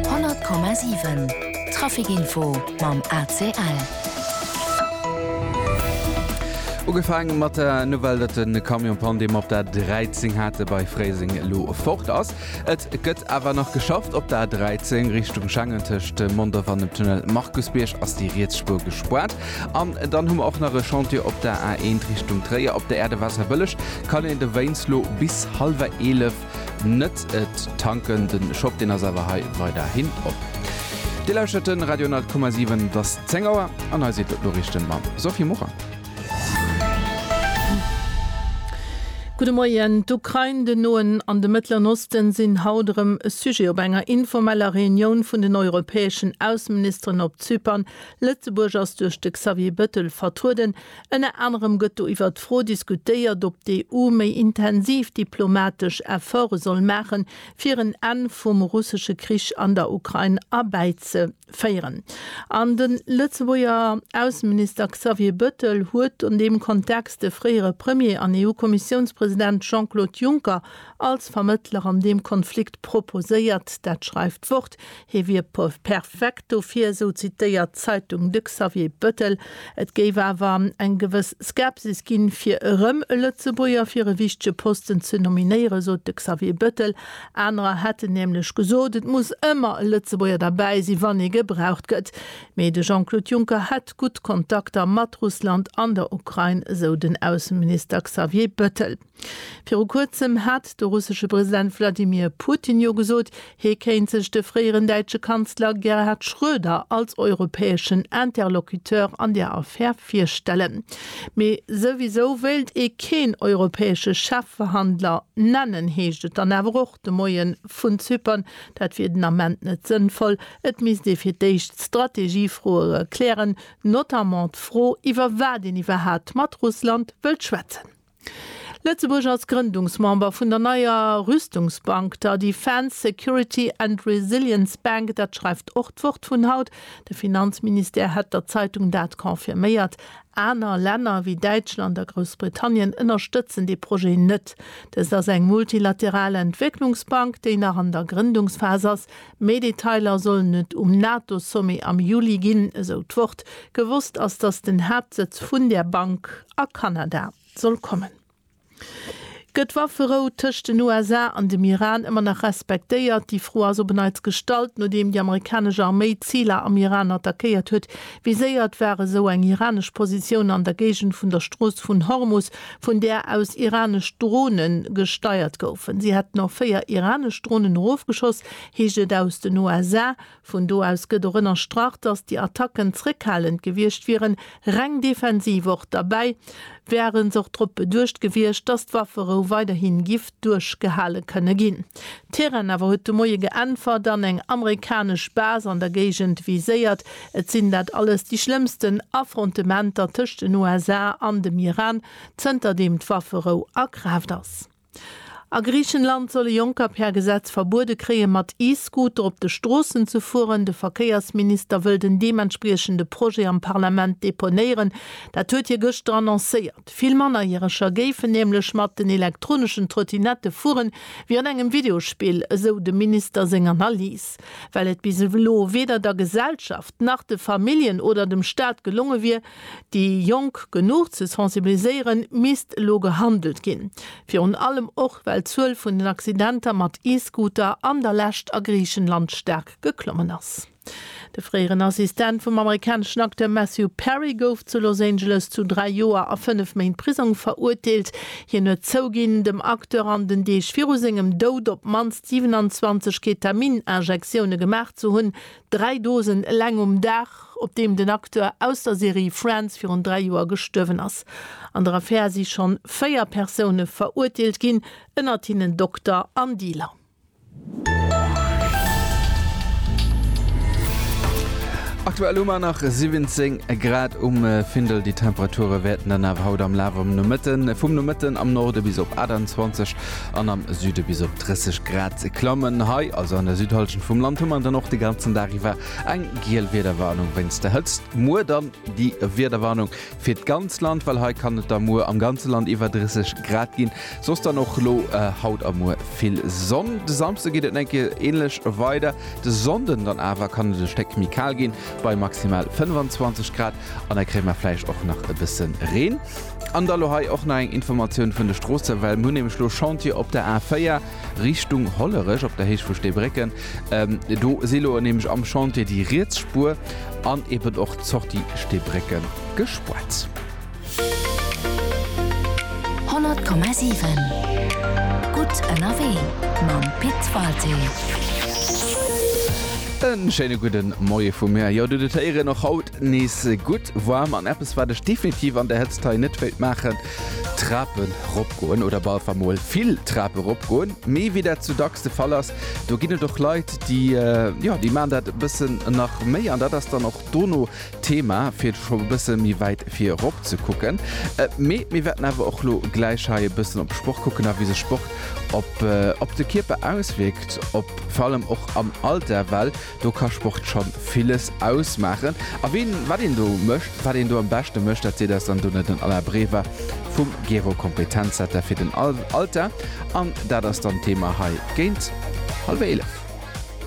100,7 Trafic Info mam ACL. Ugefaang mat der Nouvelle, datt de Camion Panne, dee mer op der A 13 hate bei Fréiseng, elo fort ass. Et gëtt awer nach geschafft op der A 13 Richtung Schengen. Tëscht Mondorf an dem Tunnel Markusbierg ass déi riets Spuer gespaart. An dann hu mer och nach e Chantier op der A 1 Richtung Tréier. Op der Aire de Wasserbëlleg kann een de Wéinst lo bis hallwer 11 net et tanken. Den Shop deen ass awer hei weiderhin op. Dir lauschtert den Radio 100,7, et ass 10 Auer an hei sinn d'Noriichten mam Sophie Morang. Gudde Moien. D'Ukrain, den Noen an de Mëttleren Osten sinn haut erëm e Sujet op enger informeller Reunioun vun den europäeschen Ausseministeren op Zypern. Lëtzebuerg ass duerch de Xavier Bëttel vertrueden. Ënner anerem gëtt do iwwert d'Fro diskutéiert, ob d'EU méi intensiv diplomatesch Efforte soll maachen, fir en Enn vum russesche Krich an der Ukrain erbäizeféieren. An de Lëtzebuerger Ausseminister Xavier Bëttel huet an deem Kontext de fréiere Premier an EU-Kommissiounspresident Jean-Claude Juncker als Vermëttler an deem Konflikt proposéiert. Dat schreift d'Wort. Hie wier perfekt dofir, esou zitéiert d'Zeitung de Xavier Bettel. Et géif awer eng gewëss Skepsis ginn, fir erëm e Lëtzebuerger fir e wichtege Posten ze nominéieren, sot de Xavier Bettel. Anerer hätten nämlech gesot, et muss ëmmer e Lëtzebuerger derbäi sinn, wann ee gebraucht gëtt. Mee de Jean-Claude Juncker hätt gutt Kontakter mat Russland an der Ukrain, esou den Ausseminister Xavier Bettel. Viru kuerzem hat de russesche President Wladimir Putin jo gesot, hie kéint sech de fréieren däitsche Kanzler Gerhard Schröder als europäeschen Interlocuteur an där Affär virstellen. Mee souwisou wéilt ee keen europäesche Chefverhandler nennen, heescht et dann awer och de Moie vun Zypern. Dat wier den Ament net sënnvoll, et misst ee fir d'éischt Strategiefroe klären, notamment d'Fro, iwwer wat een iwwerhat mat Russland wëllt schwätzen. Lëtzebuerg als Grëndungsmember vun der neier Rüstungsbank, der Defence, Security and Resilience Bank, dat schreift och d'Wort vun haut. De Finanzministère hätt der Zeitung dat confirméiert. Aner Länner wéi Däitschland a Groussbritannien ënnerstëtzen dee Projet net. Dëst ass eng multilateral Entwécklungsbank, déi nach an der Grëndungsphas ass. Méi Detailer sollen et um NATO-Sommet am Juli ginn, esou d'Wort. Gewosst ass, datt den Haaptsëtz vun där Bank a Kanada soll kommen. Gëtt d'Wafferou tëscht den USA an dem Iran ëmmer nach respektéiert? Déi Fro ass op en Neits gestallt, nodeem déi amerikanesch Arméi Ziler am Iran attackéiert huet. Viséiert war esou eng iranesch Positioun an der Géigend vun der Strooss vun Hormus, vun där aus iranesch Drone gesteiert goufen. Si hätten och véier iranesch Dronen erofgeschoss, heescht et aus den USA. Vun do aus gëtt och ënnerstrach, datt déi Attacken zréckhalend gewiescht wieren, reng defensiv och derbäi. Wären s'och drop beduecht gewiescht, datt d'Wafferou weiderhi giff duerchgehale kënne ginn. D'Iran awer huet de Moie geäntwert an eng amerikanesch Base an der Géigend viséiert. Et sinn dat alles déi schlëmmsten Affrontementer tëscht den USA an dem Iran, zënter deem d'Wafferou a Kraaft ass. A Griichenland solle Jonker per Gesetz verbuede kréien, mat E-Scooter op de Stroossen ze fueren. De Verkéiersminister wëll den deementspriechende Projet am Parlament deponéieren. Dat huet hie gëschter annoncéiert. Vill Mannerjäreger géifen nämlech mat den elektroneschen Trottinette fueren, wéi an engem Videospill, esou dem Minister seng Analys. Well et bis elo weder der Gesellschaft, nach de Familljen oder dem Staat gelonge wier, Déi Jonk genuch ze sensibiliséieren, misst elo gehandelt ginn. Virun allem och, well d'Zuel vun den Accidenter mat E-Scooter an der Lescht a Griichenland staark geklommen ass. De fréieren Assistent vum amerikaneschen Acteur Matthew Perry gouf zu Los Angeles zu dräi Joer a fënnef Méint Prisong verurteelt. Hien huet zouginn, dem Acteur an den Deeg viru sengem Doud op d'mannst 27 Ketamin-Injektioune gemaach ze hunn, Dräi Dosen eleng um Dag, op deem den Acteur aus der Serie Friends virun dräi Joer gestuerwen ass. An der Affär si schonn véier Persoune verurteelt ginn, ënnert hinnen Dokter an Dealer. Aktuell hu mer nach 17 Grad um Findel. Déi Temperature wäerten dann awer haut am Laf vum Nomëtten am Norde bis op 28 an am Süde bis op 30 Grad klammen. Hei, also an der Südhallschent vum Land, hu mer dann och de ganzen Dag iwwer eng giel Wiederwarnung wéinst der Hëtzt. Muer dann déi Wiederwarnung fir d'ganz Land, well hei kann et da muer am ganze Land iwwer 30 Grad ginn. Soss dann och elo haut a muer vill Sonn. De Samsde geet et en enke änlech weider. De Sonnden dann awer kann et e Stéck méi kal ginn, bei maximal 25 Grad. An hei kréie mer vläicht och nach e bësse Reen. An da lo hei och nach eng Informatioun vun de Stroosse, well mer hunn nämlech elo Chantier op der A4 Richtung Hollerech, op der Héicht vu Steebrécken. Do si elo nämlech am Chantier déi riets Spuer an eben och d'Sortie Steebrécken gespuert. 100,7 Gutt ënnerwee mam Pit Walté. En schéine gudden Moie vu mir. Jo, dut et héieren, och haut nees gutt warm an eppes wat ech definitiv an der Hëtzt hei net wéilt maachen, Trapen rop goen oder bal wa mol vill Trape rop goen. Mee wéi dat sou dacks de Fall ass, do ginn et och Leit déi, jo, déi maan dat e bëssen nach méi an dat ass dann och dono Thema fir scho e bësse méi wäit virop ze kucken, mee mir wäerten awer och lo gläich hei e bëssen op d'Sport kucken a wéi sech Sport op de Kierper auswierkt, op vor allem och am Alter, well do ka Sport scho villes ausmaachen. A ween wat een do mécht, wat een do am beschte mécht, dat seet eis dann dono den Alain Brever vum Gero Kompetenzcenter fir den Alter an dat ass dann d'Thema hei géint hallwéi 11.